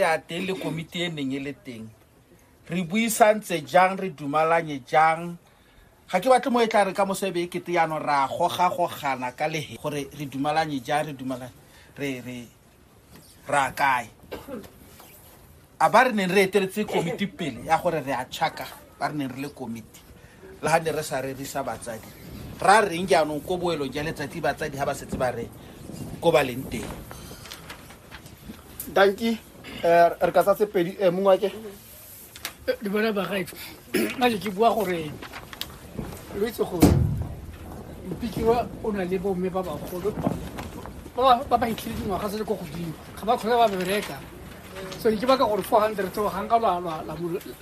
ya teng le komiti e neng e le teng re buisantse jang re dumalanye jang ga ke batle mo e tla re ka moso e be e kete yano ra gogagogana ka lege gore re dumalanye jang re dumalanye re re ra kae a ba re neng re eteletse komiti pele ya gore re a tšhaka ba re neng re le komiti le ga ne re sa rerisa batsadi ra reng jaanong ko boelo ja letsatsi batsadi ga ba setse ba re ko ba leng teng danki eh, re ka tsa tse pedi eh, mongwe ake di bona bagaetso a ke ke bua gore lo itse gore mpikiwa o na le bomme ba bagolo ba ba itlhile dingwaga se le ko godimo ga ba kgole ba bereka so ke baka gore four hundred o ga nka la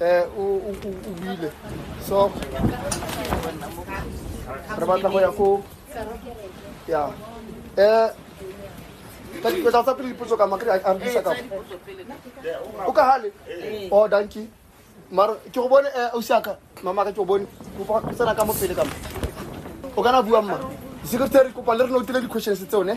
Eh, o bile so re batla go ya ko ya eh ka dipetsa tsa pele dipotso ka makre a mpisa ka o ka hale o oh, danki maro ke go bone eh, o siaka mama ka ke go bone o fa tsena ka mo pele ka mo o kana bua mma secretary kopa le re no tile di questions tseo ne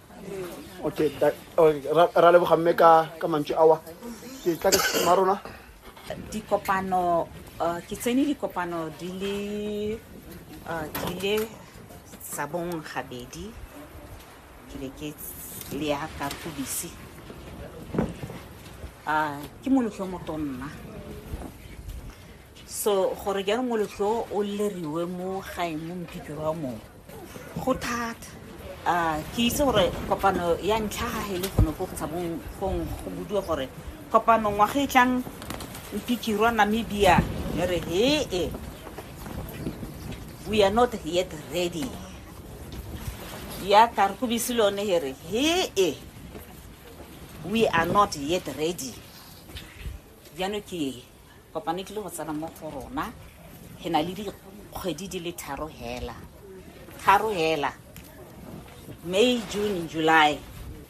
okay ra leboga mme ka ka mantswe awa ke tla ke ma rona dikopano uh, ke tsene dikopano di le uh, di le sa bong gabedi ke be ke le ya ka tubisi uh, ke molotlho motonna so gore jaanong molotlho o leriwe mo gae mo mphikiro wa mongwe go thata a ke itse gore kopano ya ntlha ga e le gone ko tshabong gong go budiwa gore kopano ngwaga e tlang mpikirwa namibia e re hee we are not yet ready ya karkobisi le one e re hee we are not yet ready jaanong ke kopano e tlile go tsena mo go rona re na le dikgwedi di le tharo hela tharo hela may june july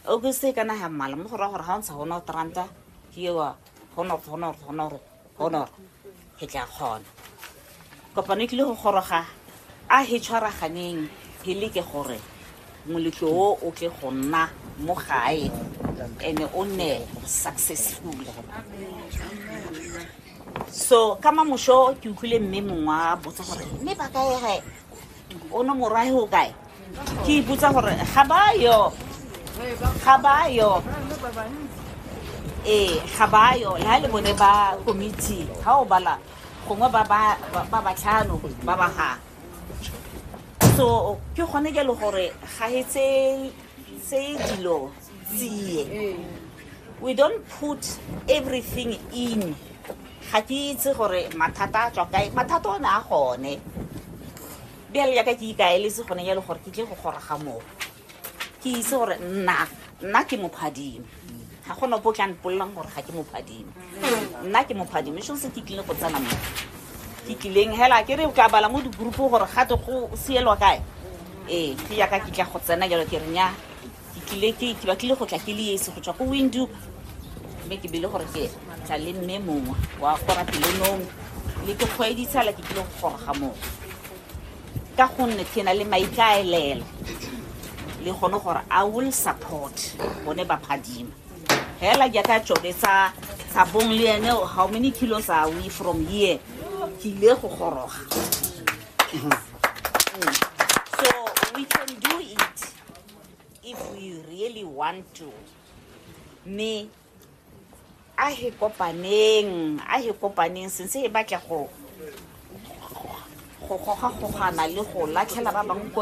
august e kana ga mmala mo go raya gore ga o ntsha gone tranta ke ewa honor honor honor honor ke tla kgona kopano e tlile go goroga a he tshwaraganeng he leke gore moletlo o o tle go nna mo gae ene o nne successful so ka mamoso ke utlwile mme mongwe wa botsa gore mme ba kae gae o no morwahe o kae ke ipotsa gore ga bayo ga bayo ee ga bayo le ga le bone ba committee ga o bala gongwe ba ba tlhano ba ba ga so ke gone ke le gore ga e tse dilo tsie we don't put everything in ga ke itse gore mathata a tswa kae mathata o ne a gone bjale yaka ke ikaeletse gone ya le gore ke tle go goroga moo ke itse gore nna nna ke mophadime ga gona bo tla mpololang gore ga ke mophadime nna ke mophadime so se ke tlile go tsena mo ke tlileng hela ke re o tla bala mo digroupo gore gate go sielwa kae ee ke yaka ke tla go tsena jalo ke renya ke tlile ke ke batlile go tla ke le ese go tswa ko windu mme ke bele gore ke tla le mme mongwe wa gora pelonong le ke kgweditsala ke tlile go goroga mongwe ka gonne ke na le maikaelelo le gone gore i will support bone ba phadima hela jaaka tsone tsa tsa bong le ene how many kilos are we from here ke ile go goroga Mm. so we can do it if we really want to me a he kopaneng a he kopaneng since e batla go go gogagogana le go latlhela ba bangwe ko